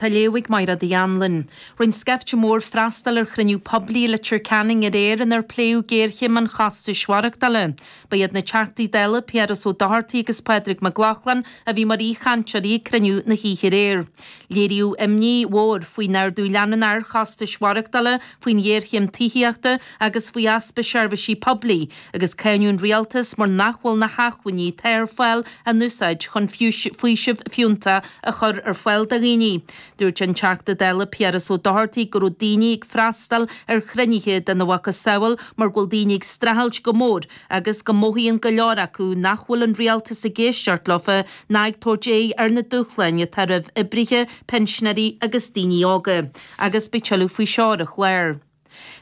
Tá léamh ag Máire Ní Anluain. Rinn scaifte mór freastal ar chruinniú poiblí i Leitir Ceanainn aréir inar pléadh géarchéim an chostais mhaireachtála. Ba iad na Teachtaí Dála Piaras Ó Dochartaigh agus Pádraig Mac Lochlainn a bhí mar aoichainteoirí ag cruinniú na hoíche aréir. Léiríodh imní mhór faoin ardú leanúnach ar chostais mhaireachtála, faoin ghéarchéim tithíochta agus faoi easpa seirbhísí poiblí, agus cáineadh an Rialtas mar nach bhfuil na hachmhainní atá ar fáil á n-úsáid chun faoiseamh fiúnta a chur ar fáil do dhaoine. Dúirt an Teachta Dála Piaras Ó Dochartaigh go raibh daoine ag freastal ar chruinnithe de na mhacasamhail mar go bhfuil daoine ag streachailt go mór agus go mothaíonn go leor acu nach bhfuil an Rialtas ag éisteacht leo ná ag tabhairt aghaidh ar na dúshláin atá roimh oibrithe, pinsinéirí agus daoine óga. Agus beidh tuilleadh faoi seo ar an chlár.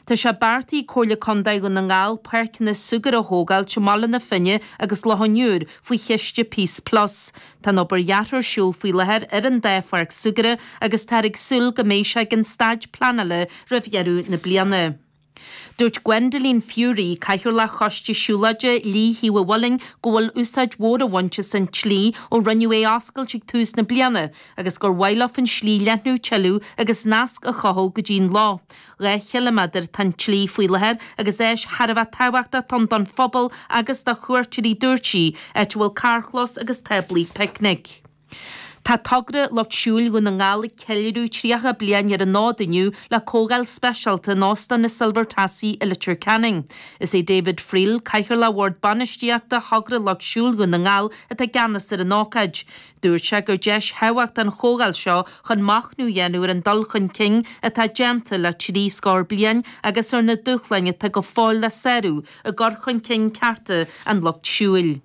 Tá sé beartaithe ag Comhairle Contae Dhún na nGall páirceanna súgartha a thógáil i mBaile na Finne agus Loch an Iúir faoi chiste Peace Plus. Tá an obair dheartha ar siúl faoi láthair ar an dá pháirc súgartha agus táthar ag súil go mbeidh sé ag an staid pleanála roimh dheireadh na bliana. Dúirt Gwendoline Furey, Cathaoirleach Choiste Siúlóide Leitir Mhic an Bhaird go bhfuil úsáid mhór á bhaint as an tslí ó rinneadh é a oscailt ag tús na bliana, agus gur mhaith leof an slí a leathnú tuilleadh agus nasc a chothú go dtí'n loch. Dhá chiliméadar atá sa tslí faoi láthair agus áis thar a bheith tábhachtach atá ann don phobal agus do chuairteoirí dúirt sí, áit a bhfuil carrchlós agus táblaí picnic. Tá togra Lucht Siúil Dhún na nGall ag ceiliúradh 30 bliain ar an fhód inniu le comhdháil speisialta in Óstán na Silver Tassie i Leitir Ceanainn. Is é David Friel, Cathaoirleach Bhord Bainistíochta Thogra Lucht Siúil Dhún na nGall atá i gceannas ar an ócáid. Dúirt sé gur deis thábhachtach an chomhdháil seo chun machnamh a dhéanamh ar an dul chun cinn atá déanta le trí scór bliain agus ar na dúshláin atá go fóill le sárú i gcur chun cinn cearta an Lucht Siúil.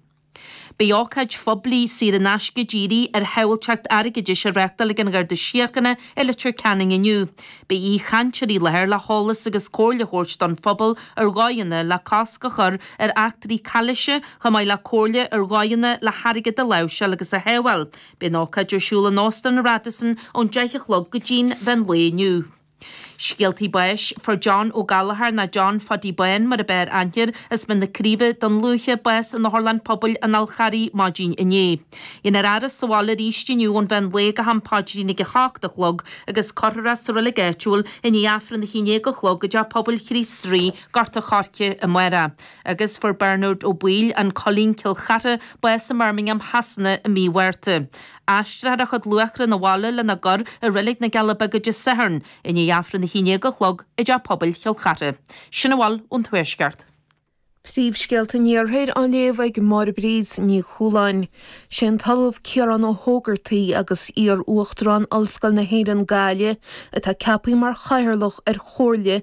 Beidh ócáid phoiblí, saor in aisce dírithe ar shábháilteacht airgeadais á reáchtáil ag an Gharda Síochána i Leitir Ceanainn inniu. Beidh aoichainteoirí i láthair le heolas agus comhairle a thabhairt don phobal ar dhóigheanna le cosc a chur ar eachtraí calaoise, chomh maith le comhairle ar dhóigheanna le hairgead a láimhseáil agus a shábháil. Beidh an ócáid ar siúl in Óstán an Radisson ón deich a chlog go dtí'n mheán lae inniu. Scéaltaí Báis, Fuair John Ó Gallagher, nó John Phaidí Bán mar ab fhearr aithne air as Mín na Craoibhe Dún Lúiche, bás in Otharlann Pobail an Fháil Charraigh maidin inné. Beidh an fhaire sa bhaile arís inniu ón mheán lae go ham paidrín ag a hocht a chlog agus curfar é sa reilig áitiúil i ndiaidh Aifreann a haon déag a chlog i dTeach Pobail Chríost Rí, Gort a' Choirce amárach agus fuair Bearnard Ó Baoill, An Coillín, Cill Chartha, bás i mBirmingham Shasana i mí Mhárta. Aistreofar a chuid luatha 'na bhaile lena gcur i Reilig na gCealla Beaga Dé Sathairn i ndiaidh Aifreann a haon dhéag a chlog i dTeach Pobail Chill Chartha. Sin a bhfuil ón Tuaisceart. Príomhscéalta an Iarthair á léamh ag Máire Bríd Ní Chualáin. Sé an tOllamh Ciarán Ó hÓgartaigh agus iar-Uachtarán Ollscoil na hÉireann, Gaillimh, atá ceapaithe mar Chathaoirleach ar Chomhairle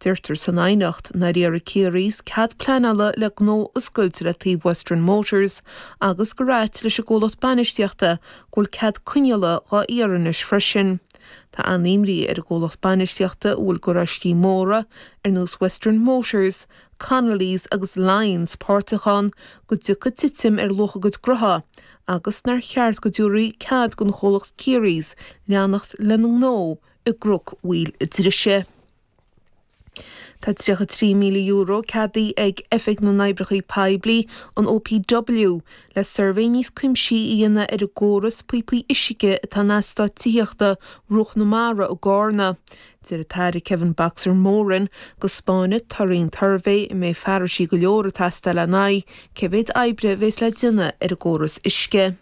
Deirtear san aighneacht nár iarr Kearys cead pleanála le gnó a oscailt le taobh Western Motors agus gur ait leis an gcomhlacht bainistíochta go bhfuil cead coinneála dhá iarraidh anois freisin. Tá an-imní ar an gcomhlacht bainistíochta a bhfuil garáistí móra ar nós Western Motors, Connolly's agus Lyons páirteach ann go dtiocfaidh titim ar luach a gcuid gnótha agus nár cheart go dtabharfaí cead don chomhlacht Kearys leanacht lena ngnó i gCnoc Mhaoil Drise. Tá €33,000 ceadaithe ag Oifig na nOibreacha Poiblí, an OPW, le suirbhé níos cuimsithí a dhéanamh ar an gcóras píopaí uisce atá in eastáit tithíochta Bhruach na Mara i gCarna. Deir an tAire Kevin 'Boxer' Moran go 'spáinfidh torthaí an tsuirbhé a mbeidh fearais go leor ag teastáil lena aghaidh cé mhéad oibre a bhéas le déanamh ar an gcóras uisce'.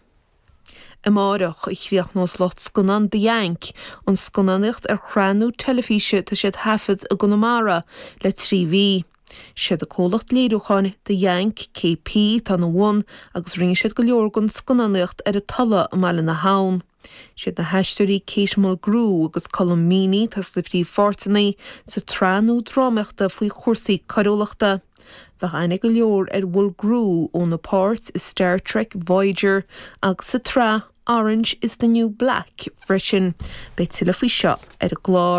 Amárach a chríochnós lucht scannán The Yank an scannánaíocht ar shraith nua teilifíse atá siad a thaifead i gConamara le trí mhí. Siad an comhlacht léiriúcháin The Yank, KP, atá ina bhun agus rinne siad go leor den scannánaíocht ar an Tulaigh i mBaile na hAbhann. Siad na haisteoirí Kate Mulgrew agus Colm Meaney atá sna príomhpháirteanna sa tsraith nua drámaíochta faoi chúrsaí coiriúlachta. Bheadh aithne go leor ar Mulgrew óna páirt i Star Trek, Voyager agus sa tsraith Orange is the New Black freisin. Beidh tuilleadh faoi seo ar an gclár.